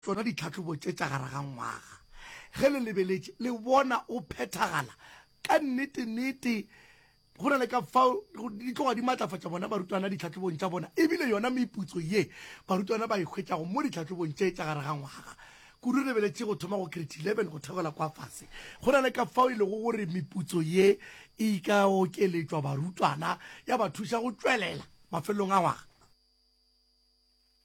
Tsona ditlhahlobo tše tša gare ga ngwaga, ge le lebeletše, le bona o phethagala ka nnete-nnete go na le ka fao di tloga di matlafatša bona barutwana ditlhahlobong tša bona ebile yona meputso ye barutwana ba e hwetšago mo ditlhahlobong tše tša gare ga ngwaga. Kudu re lebeletše go thoma go Grade 11 go theogela kwa fase, go na le ka fao e lego gore meputso ye e ka okeletšwa barutwana ya ba thuša go tšwelela mafelelong a ngwaga.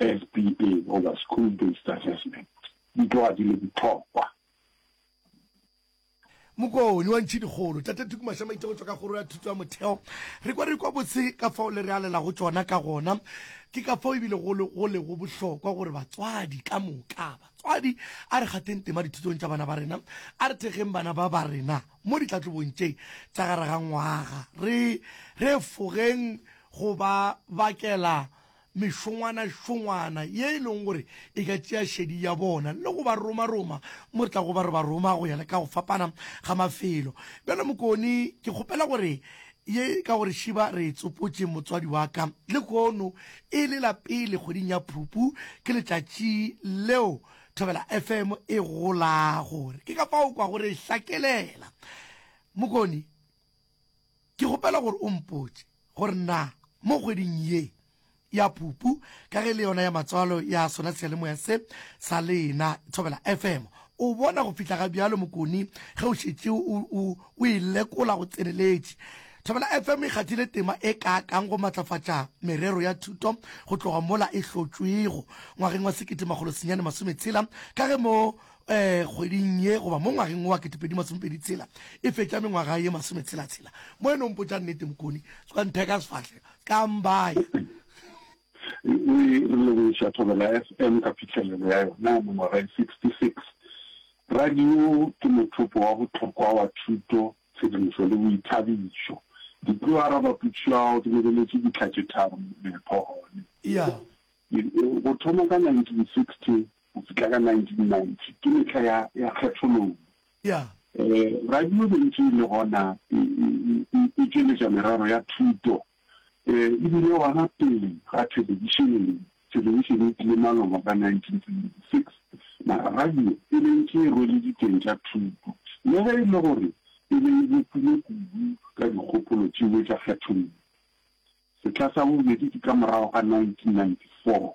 SBA goba School Based Assessment di tloga di le bohlokwa. Mokoni wa Ntšhidikgolo, Tate Tuku Mashamaite go tšwa ka Kgoro ya Thuto ya Motheo, Re kwa re kwa botse ka fao le re alelago tšona ka gona. Ke ka fao e bile go le go lego bohlokwa gore batswadi ka moka, batswadi a re kgatheng tema dithutong tša bana ba rena, a re thekgeng bana ba ba rena mo ditlatlobong tše tša gare ga ngwaga, re re efogeng go ba bakela mešongwanašongwana ye e lego gore e ka tšea šedi ya bona le go ba romaroma mo re tlago ba re ba roma go ya le ka go fapana ga mafelo. Bjale Mokoni, ke kgopela gore ye ka gore šiba re e tsopotše motswadi wa ka, lehono e le la pele kgweding ya Phupu, ke letšatši leo Thobela FM e golago, ke ka fao o kwago re e hlakelela. Mokoni. Ke kgopela gore o mpotše gore na mo kgweding ye ya Phupu, ka ge le yona ya matswalo ya sona seyalemoya se sa lena Thobela FM, o bona go fihla ga bjalo Mokoni ge o šetše o, o, o e lekola go tseneletše. Thobela FM e kgathile tema e kaakang go matlafatša merero ya thuto go tloga mola e hlotšwego ngwageng wa sekete makgolo senyane masome tshela ka ge mo kgweding ye goba mo ngwageng wo wa ketepedi masomepedi tshela e fetša mengwaga ye masometshela-tshela mo e no mpotša nnete mokoni tswa ntheka sefahle ka mbaya re lebogiša Thobela FM ka phihlelelo ya yona mengwaga e 66 radio ke mothopo wa bohlokwa wa thuto tshedimošo le boithabišo ke tlo araba putšo ya gago ke lebeletše dihla tše tharo mepho gone go thoma ka 1960 go fihla ka 1990, ke mehla ya, ya kgethololo. Ya. Eh, radio e ntše e le gona e, e, e, e tšweletša merero ya thuto, eh, e bile gona pele ga thelebišene. Thelebišene e tlile maloba ka 1976, mara radio e be ntše e rwele diteng tša thuto, le ge e le gore e be e bopilwe kudu ka dikgopolo tšeo tša kgethololo. Sehla sa bobedi ke ka morago ga 1994.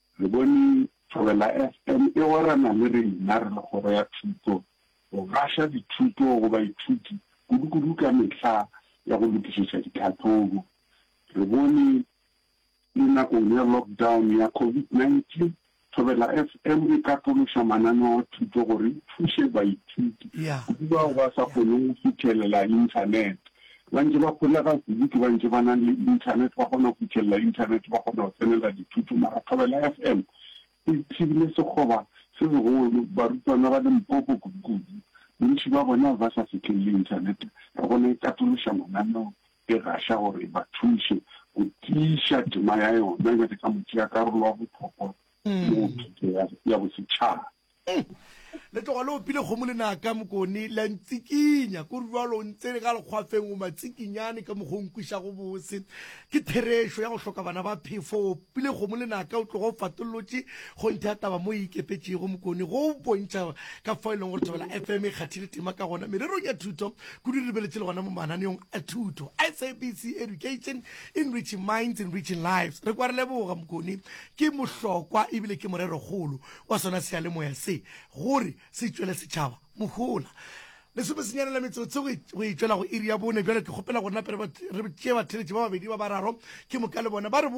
Le bone, Thobela FM e gwerana le rena re le Kgoro ya Thuto go gaša dithuto go baithuti kudukudu ka mehla ya go lokišetša ditlhahlobo. Re bone, Le nakong ya lockdown ya Covid 19, Thobela FM e katološa mananeo a thuto gore e thuše baithuti, kudu bao ba sa kgoneng go fithelela Internet. Ba ntše ba holega kudu ke bantše ba nang le Internet, ba kgona go fithelela Internet, ba kgona go tsenela dithuto. Mara Thobela FM e thibile sekgoba se segolo. Barutwana ba Limpopo kudu-kudu bontši ba bone ba be ba sa fihlelele Internet. Re gona e katološa mananeo, e gaša gore e ba thuše go tiiša tema ya yona bjale ka motšeakarolo wa bohlokwa mo thuto ya bosetšhaba. Umm! Le tloga le opile kgomo lenaka, Mokone, la ntsikinya. Ko rwalo o ntse ka lekgwafeng o matsikinyane ka mokgwa o nkwišago bose. Ke therešo ya go hloka bana ba phefo. O opile kgomo lenaka o tloga o fatollotše kgonthe ya taba mo e ikepetšego, Mokone, go o bontšha ka fao e lego gore Thobela FM e kgathile tema ka gona mererong ya thuto, kudu e lebeletše le gona mo mananeong a thuto. SABC Education, Enriching Minds, Enriching Lives. Re kwa re leboga, Mokone. Ke mohlokwa e bile ke morero-kgolo. wa sona seyalemoya se gore se tšwele setšhaba mohola. Lesomesenyane la metsotso go e tšwela go iri ya bone bjale, ke kgopela gore nape re tšee batheeletši ba babedi ba bararo ke moka le bona ba re botse.